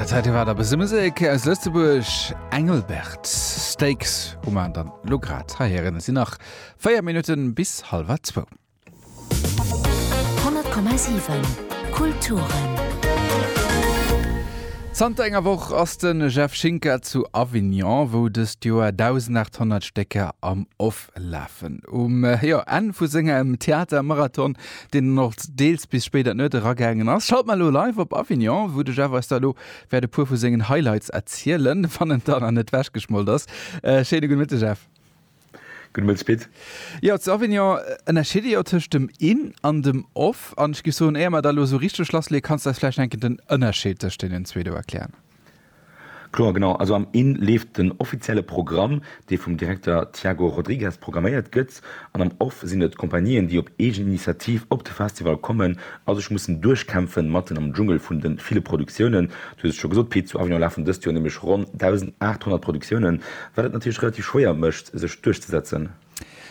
Zäite war der bese Musek aus Lëtzebuerg Engelbert Stakes hu man dann lo grad heieren sinn nach 4 Minutten bis halber zwou. 10,7 Kulturen. Zanter enger Woch ass de Jeff Schinker zu Avignon, wou dëst Joer 1.800 Stécker am Off lafen. Um jo, Enn vu sengem Theatermarathon, deen dann och deels bis spéit an d'Nuet eragaangen ass, schalte mer elo live op Avignon, wou de Jeff eis da elo wäert e puer vu sengen Highlights erzielen, wann en dann net ewechgeschmolt ass. Schéine gudde Mëtteg, Jeff. Gudde Mëtteg, Pit. Jo, zu Avignon ënnerscheet ee jo tëscht dem In an dem Off. An ech géif soen, éier mer da elo esou richteg lassleeën, kanns de eis vläicht eng Kéier den Ënnerscheed tëscht deenen zwee do erklären? Kloer, genau. Also am in leeft den offizielle Programm, dee vum Direkter Tiago Rodrigues programméiert gëtt, an am off sinn et d'Compagnien, déi op eegen Initiativ op de Festival kommen a sech mussen duerchkämpfen, matten am Dschungel vun de ville Produktiounen. Du hues et scho gesot, Pit, zu Avignon lafen dëst Joer nämlech ronn 1.800 Produktiounen, wat et natierlech relativ schwéier mécht, sech duerchzesetzen.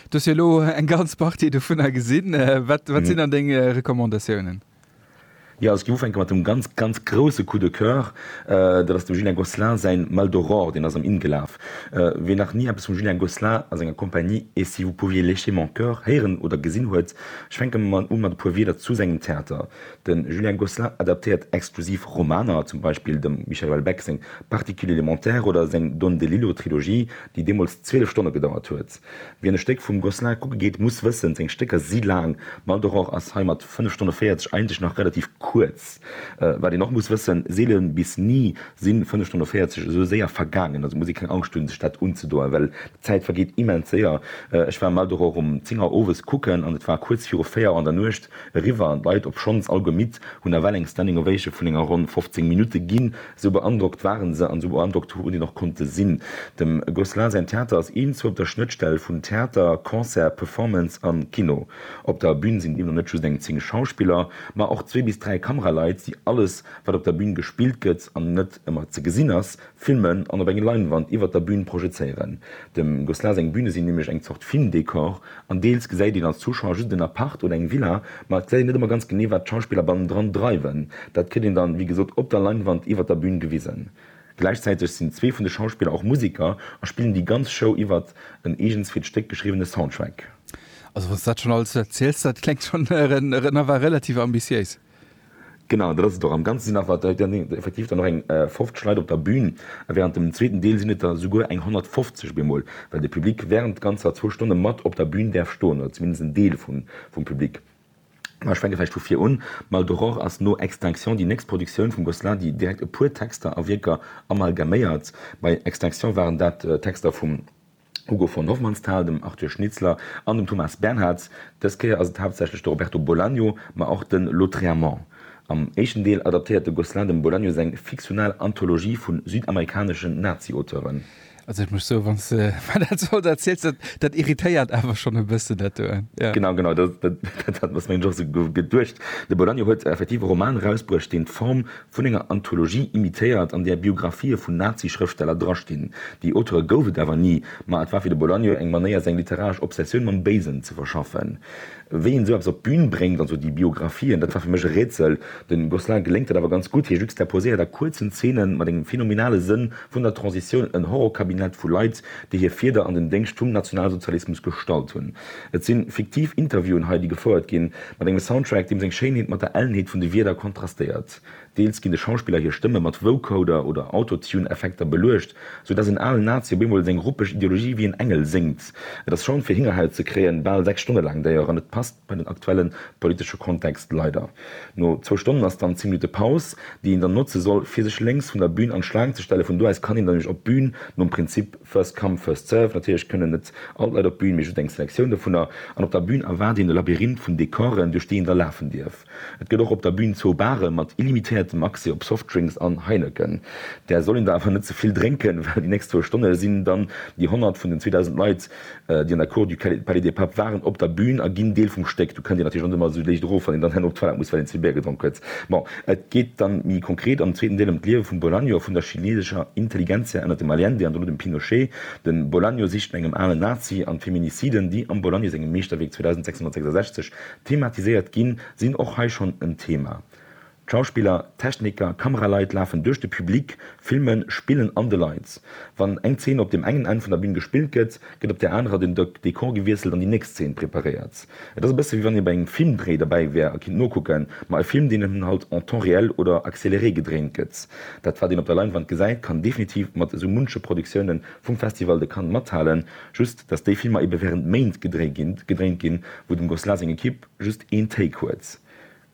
Du hues jo elo eng ganz Partie dovunner gesinn. Wat sinn dann deng Recommandatiounen? Jo, ech géif ufänke mat dem ganz, ganz grousse Coup de coeur. Dat ass dem Julien Gosselin säin Mal d'Aurore, deen ass am inn gelaf. Ween nach ni eppes vum Julien Gosselin a senger Compagnie Et si vous pouviez lécher mon cœur héieren oder gesinn huet, ech fänke mol u mat e puer Wieder zu sengem Theater. De Julien Gosselin adaptéiert exklusiv Romaner, zum Beispill dem Michel Houellebecq seng Particules élémentaires oder seng Don DeLillo-Trilogie, déi deemools 12 Stonne gedauert huet. Wien e Stéck vum Gosselin kucke geet, muss wëssen, seng Stécker si laang. Mal d'Aurore ass hei mat 5 Stonne 40 eigentlech nach relativ kuerz. Wat een och muss wëssen, seele bis ni si 5 Stonne 40 esou séier vergaangen. Also muss ee keng Angscht hunn, sech dat unzedoen, well d'Zäit vergeet immens séier. Ech war Mal d'Aurore um 10 Auer owes kucken an et war kuerz viru 4 Auer an der Nuecht eriwwer. D'Leit, obschonns alleguer midd, hunn nawell eng Standing Ovation vun enger ronn 15 Minutte ginn. Sou beandrockt waren se an sou beandrockt hu en och konnte sinn. Dem Gosselin säin Theater ass een zu op der Schnëttstell vun Theater, Concert, Performance an Kino. Op der Bün sinn deemno net just eng 10 Schauspiller, ma och zwee bis dräi Kameraleit, déi alles, wat op der Bün gespillt gëtt an net ëmmer ze gesinn ass, filmen an op eng Leinwand iwwert der Bün projezéieren. Dem Gosselin seng Büne sinn nämlech eng Zort Filmdekor An deels gesäit een als Zuschauer just en Appart oder eng Villa, ma et gesäit een net ëmmer ganz genee, wat d'Schauspiller bannendran dreiwen. Dat kritt een dann, wéi gesot, op der Leinwand iwwert der Bün gewisen. Gläichzäiteg sinn zwee vun de Schauspiller och Museker a spillen déi ganz Show iwwer en eegens fir d'Stéck geschriwwene Soundtrack. Also wanns du dat schon alles erziels, dat klengt schon nach relativ ambitiéis. Genau, dat ass et och. Am Ganze sinn awer et dann effektiv dann och eng 50 Leit op der Bühn. A wärend dem zweeten Deel sinn et der souguer eng 150 bemol, well de Public wärend ganzer zwou Stonne mat op der Bühn däerf stoen, oder zumindest en Deel vum Public. Mä ech fänke vläicht vu vir un. Mal d'Aurore ass no Extinction déi nächst Produktioun vum Gosselin, déi direkt e puer Texter a Wierker amalgaméiert. Bei Extinction waren dat Texter vum. Hugo von Hofmannsthal, dem Arthur Schnitzler an dem Thomas Bernhards. Dës Kéier ass et haaptsächlech de Roberto Bolaño, ma och de Lautréamont. Am éischten Deel adaptéiert de Gosselin dem Bolaño seng fiktional Anthologie vu südamerikaneschen Nazi-Auteuren. Also ech muss soen, wann s de mer dat esou alt erziels, dat dat irritéiert awer schonn e bëssen, dat do, jo. Genau, genau, dat hat mir nämlech och esou geduecht. De Bolaño huet effektiv e Roman erausbruecht, deen d'Form Vun enger Anthologie imitéiert, an där Biographië vun Nazi-Schrëftsteller drastinn. Déi Auteure gouf et awer ni, ma et war fir de Bolaño eng Manéier, seng literaresch Obsessioun mam Béisen ze verschaffen. Wéi een esou eppes op d'Bün bréngt, also déi Biographiën, dat war fir mech e Rätsel. Dem Gosselin geléngt dat awer ganz gutt, hie juxtaposéiert a kuerzen Zeenen, mat engem phenomenale Sënn vun der Transitioun, en Horrorkabinett vu Leit, déi hir Fieder an den Déngscht vum Nationalsozialismus gestallt hunn. Et si fiktiv Interviewen hei, déi gefouert ginn, mat engem Soundtrack, deem seng Schéinheet mat der Ellenheet vun de Wierder kontrastéiert. Deels ginn de Schauspiller hir Stëmme mat Vocoder oder Autotune-Effekter beluecht, sou dass en alen Nazi op eemol seng ruppeg Ideologie wéi en Engel séngt. Et ass schonn fir Hingerhäut ze kréien, bal 6 Stonne laang Déier an et passt bei den aktuelle politesche Kontext leider. No zwou Stonnen ass dann 10 Minutte Paus, déi een dann notze soll, fir sech lénks vun der Bün an d'Schlaang ze stellen. Vun do aus kann een dann nämlech op d'Bün, nom Prinzip. First come, first served, natierlech kënnen net all d'Leit op d'Bün, mee just eng Selektioun dovunner. An op der Bün erwaart een e Labyrinth vun Decoren, duerch déi een da lafen dierf. Et gëtt och op der Bün zwou Baren mat illimitiertem Accès op Softdrinks an Heineken. Där soll een der awer net ze vill drénken, well déi nächst zwou Stonne sinn dann déi 100 vun den 2.000 Leit déi an der Cour du Palais des Papes waren, op der Bühn a ginn Deel vum Stéck. Do kënnt Dir natierlech net ëmmer esou léicht erof, wann een dann herno op d'Toilette muss, well een ze vill Bier gedronk huet. Bon, et geet dann méi konkret am zweeten Deel ëm d'Liewe vum Bolaño a vun der chinesescher Intelligentsia ënnert dem Allende an dono dem Pinochet. De Bolaño sicht no engem alen Nazi an d'Feminiciden, déi am Bolaño sengem Meeschterwierk 2666 thematiséiert ginn, sinn och hei schonn en Thema. D'Schauspiller, Techniker, Kameraleit lafen duerch de Public, filmen, spillen an de Leit. Wann eng Zeen op deem engen Enn vun der Bün gespillt gëtt, gëtt op där anerer den Dekor gewiesselt an déi nächst Zeen preparéiert. Et ass e bësse wéi wann ee bei engem Filmdréi derbäi wär a kinnt nokucken, ma e Film deen eben halt en temps réel oder accéléré gedréint gëtt. Dat wat een op der Leinwand gesäit kann definitiv mat esou munche Produktioune vum Festival de Cannes mathalen, just dass déi Filmer ebe während Méint gedréint ginn, wou dem Gosselin seng Equipe just een Take huet.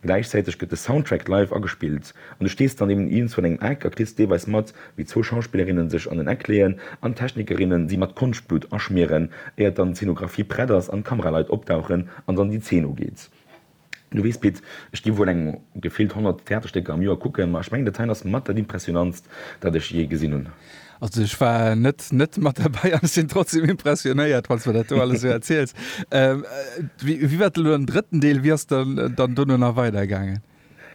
Gläichzäiteg gëtt de Soundtrack live agespillt an du stees dann eben iergendswou an engem Eck a kriss deelweis mat, wéi zwou Schauspillerinnen sech an en Eck leeën an d'Technikerinnen si mat Konschtblutt aschmieren, éiert dann d'Zeenografie prett ass an d'Kameraleit opdauchen an dann déi Zeen ugeet. Du weess, Pit, ech gi wuel eng gefillt 100 Theaterstécker am Joer kucken, ma ech mengen dat heien ass mat dat Impressionantst, dat ech jee gesinn hunn. Also ech war net net mat derbäi an ech sinn trotzdem impressionéiert, wann s de mir dat do alles esou erziels. Ähm, wéi wéi war dann elo den drëtten Deel? Wéi ass dann dann dono nach weidergaangen?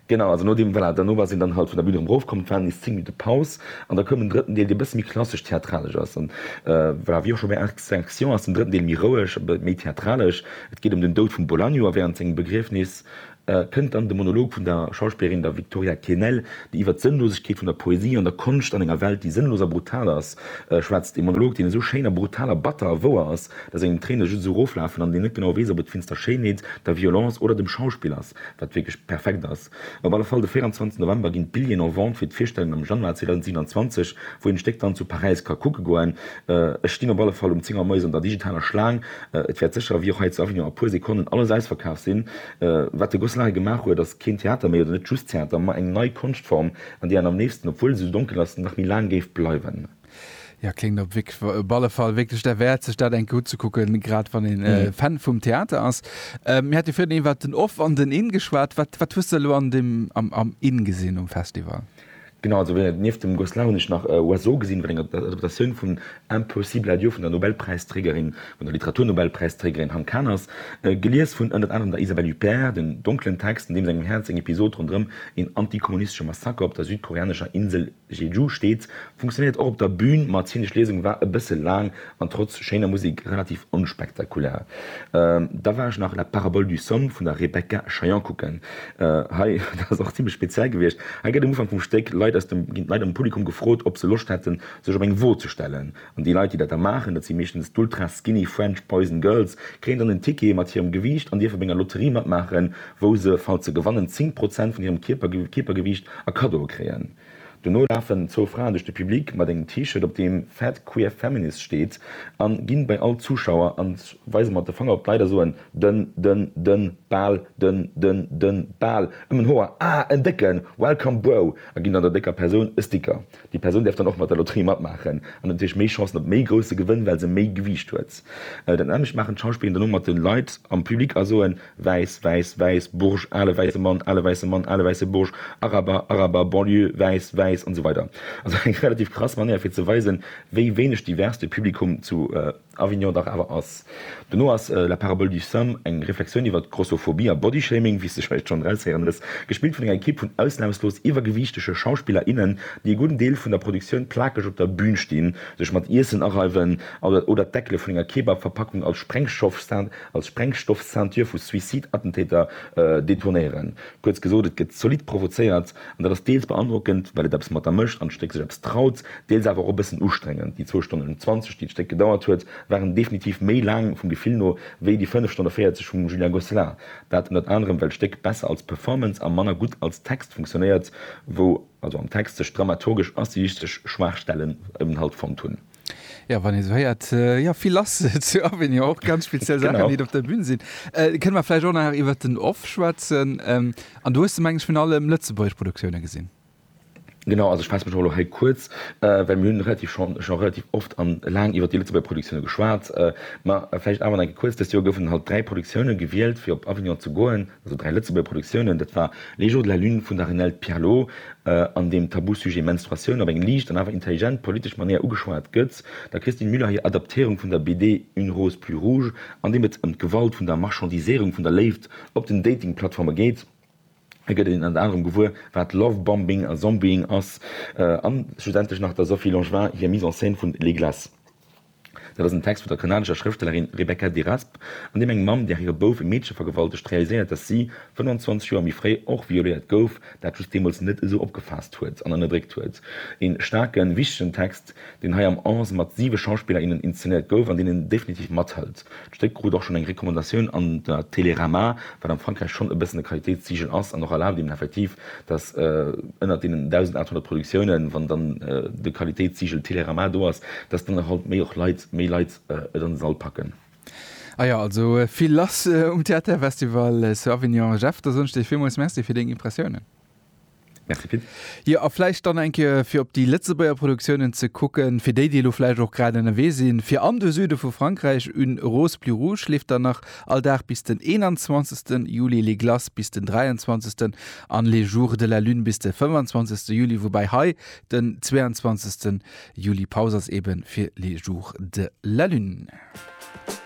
Genau, also nodeem, voilà, derno war sinn dann halt vun der Bühn erëm erofkomm, et waren nees 10 Minutte Paus an da koum den drëtten Deel, dee e bësse méi klassesch-theatralesch ass. An voilà, wéi och scho bei Arc de Sanctions ass den drëtten Deel méi roueg, méi theatralesch. Et geet ëm den Doud vum Bolaño a wärend sengem Begriefnis kënnt dann de Monolog vun der Schauspillerin, der Victoria Quesnel, déi iwwer d'Sënnlosegkeet vun der Poesie an der Konscht an enger Welt, déi sënnlos a brutal ass, schwätzt. Ee Monolog, deen esou schéin a brutal a batter a wouer ass, datt engem d'Tréine just esou eroflafen an een net genau weess, ob et d'finster Schéinheet, der Violence oder dem Schauspill ass, wat wierklech perfekt ass. Op alle Fall, de 24 November ginn d'Billjeeën en Vente fir d'Virstellung am Januar 2027, wou een d'Stéck dann zu Paräis ka kucke goen. Ech stinn op alle Fall um Zéngermäus an der digitaler Schlaang. Et wäert sécher, ewéi och hei zu Avignon, a puer Sekonnen alles ausverkaaft sinn. Wat de Gosselin hei gemaach huet, ass keen Theater méi, oder net just Theater, ma eng nei Konschtform, an déi an am nächsten, obwuel se esou donkel ass, nach méi laang géif bleiwen. Jo, kléngt op alle Fall wierklech derwäert, sech dat eng Kéier unzekucken, grad wann ee Fan vum Theater ass. Mir hate virun iwwert den Off an den In geschwat. Wat hues de elo am In gesinn um Festival? Genau, also wéi et nieft dem Goss Launisch nach e Oiseau gesinn, wat enger Adaptatioun vun Impossible Adieu vun der Nobelpräisträgerin, vun der Literaturnobelpräisträgerin Han Kang ass, gelies vun ënnert anerem der Isabelle Huppert, den donklen Text, an deem sengem Häerz eng Episod ronderëm een antikommunistesche Massaker op der südkoreanescher Insel Jeju steet, funktionéiert och op der Bün, ma d'szenesch Liesung war e bësse laang an trotz schéiner Musik relativ onspektakulär. Da war ech nach La parabole du somme vun der Rebecca Chaillan kucken. Hei, dat ass och zimlech speziell gewiescht, hei gëtt um Ufank vum Stéck Leit aus dem, ginn d'Leit am Publikum gefrot, ob se Loscht hätten, sech op eng Wo ze stellen. An déi Leit, déi dat da maachen, dat si meeschtens d'ultra-skinny French Boys and Girls, kréien dann en Ticket mat hirem Gewiicht an dierfe bei enger Lotterie matmaachen, wou se, falls se gewannen, 10 Prozent vun hirem Kierper, Kierpergewiicht a Kaddo kréien. Dono lafen zwou Fraen duerch de Public mat engem T-Shirt op deem Fat Queer Feminist steet an ginn bei all Zuschauer an weisen mat de Fanger op d'Leit a soen dënn dënn dënn Bal dënn dënn dënn Bal ëm en Hoer ah en décken Welcome Bro a ginn dann der décker Persoun e Sticker. Déi Persoun däerf dann och mat der Lotterie matmaachen an huet natierlech méi Chancen op méi grousse Gewënn well se méi Gewiicht huet. Dat nämmlecht maachen d'Schauspilleren dono mat de Leit am Public a soen. Wäiss, wäiss, wäiss, Burj, ale wäisse Mann, ale wäisse Mann, ale wäisse Burj, Araber, Araber, Banlieue, wäiss, wäiss an esou weider Also eng relativ krass Manéier fir ze weisen, wéi wéineg divers de Publikum zu Avignon dach awer ass. Dono ass La parabole du Sam eng Reflexioun iwwert Grossophobie a Bodyshaming, wéi s de vläicht schonn eraushéieren hues, gespillt vun enger Ekipp vun ausnamslos iwwergewiichtege Schauspiller, innen, déi e gudden Deel vun der Produktioun plakeg op der Bün stinn, sech mat Iessen areiwen oder d'Deckele vun enger Kebab-Verpackung als Sprengstoff, als Sprengstoff-Ceinture vu Suicide-Attentäter detournéieren. Kuerz gesot, et gëtt zolidd provozéiert. An dat ass deels beandrockend, well et eppes mat der mécht an d'Stéck sech eppes traut, deels awer och e bëssen ustrengend. Déi zwou Stonnen an 20, déi d'Stéck gedauert huet, waren definitiv méi laang, vum Gefill no, wéi déi 5 Stonne 40 vum Julien Gosselin. Dat ënnert anerem, well d'Stéck besser als Performance a manner gutt als Text funktionéiert, wou also am Text sech dramaturgesch a stilistesch Schwaachstellen eben halt fonnt hunn. Ja wann ee sou héiert, jo vill ass zu Avignon, och ganz speziell Saachen, déi do op der Bühn sinn. Kënne mer vläicht och nach iwwert den Off schwätzen. An do hues de meng ech virun allem lëtzebuergesch Produktioune gesinn. Genau, also ech faasse mech och elo hei kuerz, well mir hunn relativ schonn scho relativ oft an laang iwwert déi lëtzebuerger Produktioune geschwat. Mä vläicht awer nach eng Kéier kuerz, dëst Joer goufen halt dräi Produktioune gewielt fir op Avignon ze goen. Also dräi Lëtzebuerger Produktiounen, dat war Les jours de la lune vun der Renelde Pierlot, an deem d'Tabusujet Menstruatioun op eng liicht an awer intelligent politesch Manéier ugeschwat gëtt, der Christine Müller hir Adaptéierung vun der BD Une rose plus rouge, an deem et ëm d'Gewalt vun der Marchandiséierung vun der Léift op den Dating-Plattforme geet. Hei gëtt een ënner anerem gewuer, wat Love-Bombing a Zombieing ass, an schlussendlech nach der Sophie Langevin hir Mise en scène vun Les glaces. Dat ass en Text vun der kanadescher Schrëfstellerin Rebecca Deraspe, an deem eng Mamm, där hire Bouf e Meedche vergewaltegt, realiséiert, datt si 25 Joer méi fréi och violéiert gouf, dat just deemools net esou opgefaasst huet an ënnerdréckt huet. Een staarken, wichtegen Text, deen hei am Onze mat siwe Schauspiller, innen inzenéiert gouf an deen een definitiv mathëlt. D'Stéck krut och schonn eng Recommandatioun an der Télérama, wat am Frankräich schonn e bëssen e Qualitéitssiegel ass an och erlaabt een effektiv, dass ënnert deenen 1.800 Produktiounen, wann dann de Qualitéitssiegel Télérama do ass, dass dann halt méi och Leit, méi Leit et an de Sall packen. Ah jo, also vill lass um Theaterfestival zu Avignon. Jeff, da soen ech dir villmools Merci fir deng Impressiounen. Merci Pit. Jo, a vläicht dann eng Kéier fir op déi Lëtzebuerger Produktiounen ze kucken, fir déi, déi elo vläicht och grad ënnerwee sinn fir an de Süde vu Frankräich. Une rose plus rouge leeft dann nach all Dag bis den 21. Juli, Les glaces bis den 23. an Les jours de la lune bis de 25. Juli, woubäi hei den 22. Juli Paus ass, eebe fir Les jours de la lune.